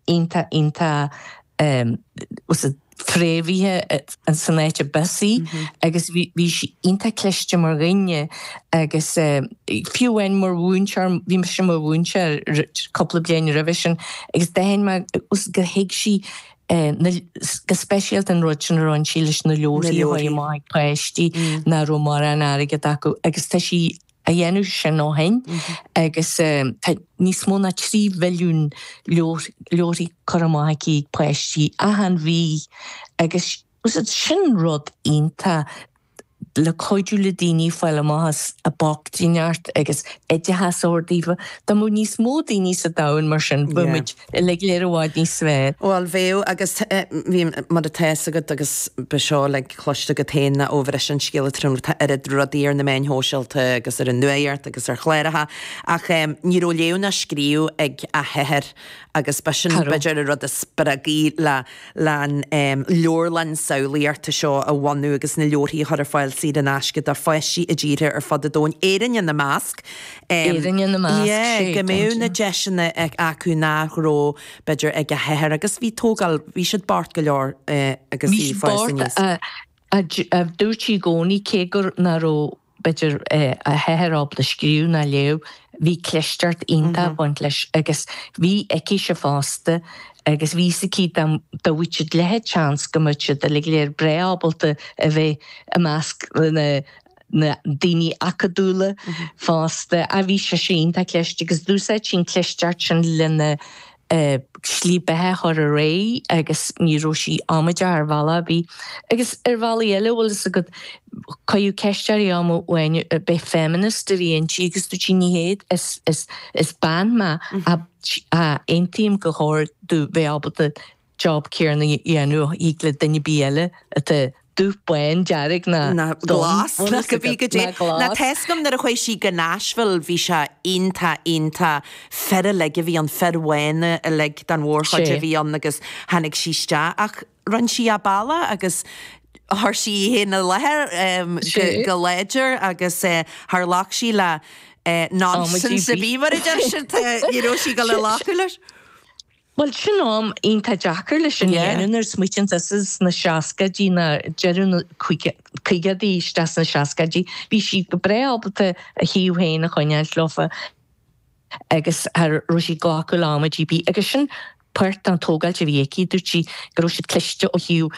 iontach, iontach fréamhaithe san áit arb as í agus bhí sí iontach cliste mar dhuine agus fiú amháin mar mhúinteoir, bhí mise i mo mhúinteoir cúpla bliain roimhe sin agus d'aithin mé gur thuig sí go speisialta an rud sin a rinn sí leis na leabharthaí a thabhairt amach ag páistí nach raibh mórán airgid acu agus tá sí a dhéanamh sin ó shin agus tá níos mó ná trí mhilliún leabharthaí curtha amach aici ag páistí achan mhí agus sin rud iontach le cuidiú le daoine fáil amach as an bhochtaineacht agus oideachas a thabhairt daofa. Dá mbeadh níos mó daoine sa domhan mar sin bheadh muid uilig go léir i bhfad níos fearr. Bhuel, bheadh agus tá, bhí, mar atá fhios agat agus beidh seo uilig cloiste agat féin ná ó bhris an scéal trom atá oiread rudaí ar na meáin shóisialta agus ar an nuacht agus ar chláracha ach ní raibh léamh ná scríobh ag a hathair agus ba sin b'fhéidir an rud a spreag í le, le an leabharlann samhlaíochta seo a bhunú agus na leabharthaí a chur ar fáil saor in aisce do pháistí i dtíortha ar fud an domhain, Éirinn ina measc. Éirinn ina measc, sa dóigh go mbeadh na deiseanna acu nach raibh, b'fhéidir, ag a hathair agus bhí tógáil, bhí siad bocht go leor agus í ag fás aníos. Ach dúirt sí i gcónaí, cé gur ná raibh, b'fhéidir, a hathair ábalta scríobh ná léamh, bhí clisteacht iontach ag baint leis agus bhí aicise fosta agus bhí fhios aici dá bhfaigheadh siad leathsheans go mbeadh siad uilig go léir breá ábalta a bheith i measc na na daoine acadúla, fosta, bhí sise iontach cliste agus d'úsáid sí an chlisteacht sin lena slí bheatha a chur ar aghaidh agus ní raibh sí amaideach ar bhealach ar bith agus ar bhealaí eile bhfuil fhios agat cuireadh ceist uirthi am amháin an b'é feminist a bhí inti agus dúirt sí ní hea is is is bean mé ach aontaím gur chóir domh bheith ábalta job céarna a dhéanamh íoc le duine ar bith eile atá dubh, bán, dearg ná glas ná cibé caidé ná tá fhios agam nuair a chuaigh sí go Nashville bhí sé iontach iontach fir uilig a bhí ann fir bhána uilig den mhórchuid a bhí ann agus tháinig sí isteach ach rinne sí a bealach agus chuir sí í féin i láthair go láidir agus char ghlac sí le nonsense ar bith mar a deir siad you know sí go le láchúil leis. Bhuel, sin am iontach deacair leis sin a dhéanamh nuair a smaoitíonn tú sna seascaidí, na, deireadh na, caogaidí, isteach sna seascaidí, bhí sí go breá ábalta a shuíomh féin a choinneáilt leofa agus cha raibh sí ag glacadh le amaidí ar bith agus sin páirt den tógáilt a bhí aici, dúirt sí go raibh siad cliste ó thaobh,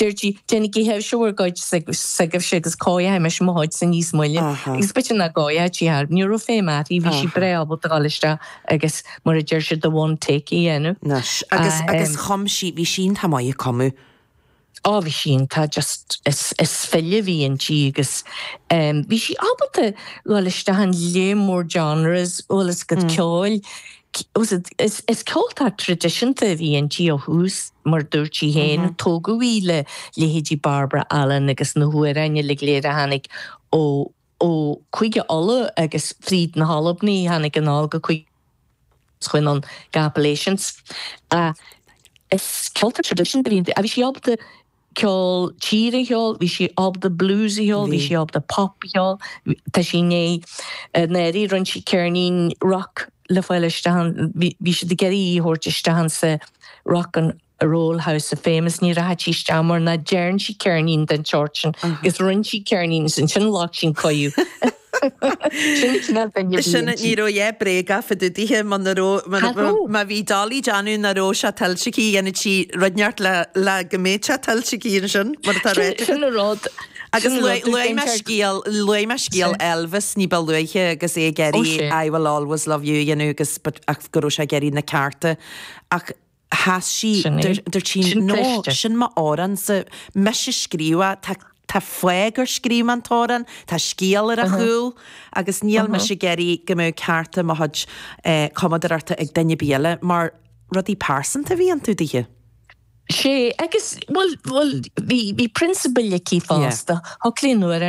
Dúirt sí, Déanaigí sibhse bhur gcuid s'agaibhse agus cóireochaidh mise mo chuidsa níos moille. Agus b'fhéidir nach gcóireochadh sí thar. Ní raibh feidhm uirthi, bhí sí breá ábalta a dhul isteach agus, mar a deir siad, the one take a dhéanamh. Anois, agus chum sí, bhí sí iontach maith ag cumadh. Ó, bhí sí iontach, just, is file a bhí inti agus bhí sí ábalta a dhul isteach in lear mór genres, bhuel is a gcuid ceoil. Is ceoltóir traidisiúnta a bhí inti ó thús, mar a dúirt sí féin. Tógadh í le leithéidí Barbara Allen agus na hamhráin uilig go léir a tháinig ó Chúige Uladh agus fríd na hAlbanaigh a tháinig anall go Cúige Uladh agus chuaigh anonn go Appalachians. Is ceoltóir traidisiúnta a bhí inti, ach bhí sí ábalta ceol tíre a cheol, bhí sí ábalta blues a cheol, bhí sí ábalta pop a cheol, tá sí i ndiaidh i ndáiríre rinn sí ceirnín rock le fáil isteach ann, bhí siad ag iarraidh í a thabhairt isteach insa Rock and Roll House of Fame is ní rachadh sí isteach mar nach dearn sí ceirnín den tseort sin agus rinn sí ceirnín is ansin ghlac sí an cuireadh. Sin an cineál duine a bhí Sin, inti. ní raibh, yeah, bréag á fuideadh daoithe má na raibh, má, Cá raibh? má bhí Dolly ag déanamh nach raibh sé tuillte aici, dhéanfadh sí rud inteacht le, le go mbeadh sé tuillte aici ansin, mar atá Sin, réiteach. sin an rud, Agus sin an luaigh, rud, luaigh mé déintear, scéal, luaigh mé scéal Sure. Elvis ní ba luaithe agus é ag Oh, iarraidh sure. I will always love you, a dhéanamh, agus, but, ach go raibh sé ag iarraidh na cearta, ach, Sheas sí. Sin í. Dúirt sí, Sin No, cliste. sin m'amhránsa. Mise a scríobh é. Tá, tá fáth gur scríobh mé an t-amhrán, tá scéal ar a chúl agus níl mise ag iarraidh go mbeadh cearta mo chuid eh cumadóireachta ag duine ar bith eile mar rudaí pearsanta a bhí iontu daoithe. Sea, agus, bhuel, bhuel, bhí, bhí prionsabail aici Yeah. fosta. Thug sí an uair ar